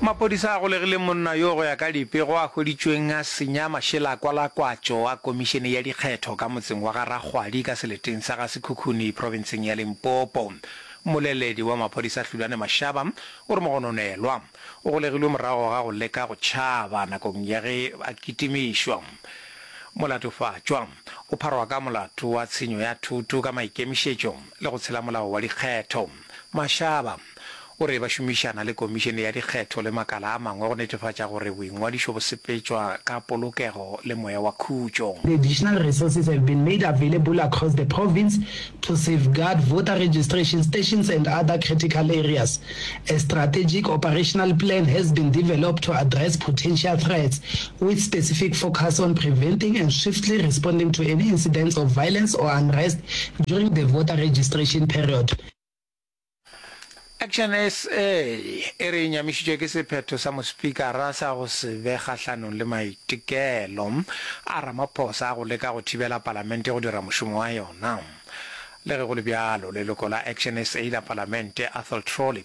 Maphodisa a golegile monna yo go ya ka dipego a hweditšweng a senya mašela a kwala kwatšo a komišene ya dikgetho ka motseng wa ga Rakgwadi ka seleteng sa ga Sekhukhuni profenseng ya Limpopo. Mmoleledi wa maphodisa Hlulane Mashaba o re mogononelwa o golegilwe morago ga go leka go tšhaba nakong ya ge a kitimišwa. Molatofatšwa o pharwa ka molato wa tshenyo ya thoto ka maikemišetšo le go tshela molao wa dikgetho. Mashaba o re ba šomišana le Komišene ya Dikgetho le makala a mangwe go netefatša gore boingwadišo bo sepetšwa ka polokego le moya wa khutšo. The additional resources have been made available across the province to safeguard voter registration stations and other critical areas. A strategic operational plan has been developed to address potential threats with specific focus on preventing and swiftly responding to any incidents of violence or unrest during the voter registration period. Action SA e re e nyamišitšwe ke sephetho sa Mospikara sa go se be kgahlanong le maitekelo a Ramaphosa a go leka go thibela Palamente go dira mošomo wa yona. Le ge go le bjalo, leloko la Action SA la Palamente, Athol Trolley,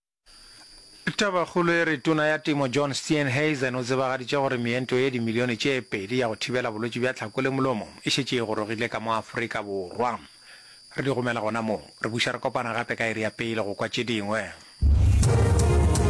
Tabakgolo e re Tona ya Temo John Steenhuisen o tsebagaditše gore meento ye dimilione tše pedi ya go thibela bolwetši bja tlhako le molomo e šetše e gorogile ka mo Afrika Borwa. Re di romela gona moo. Re buša re kopana gape ka iri ya pele go kwa tše dingwe.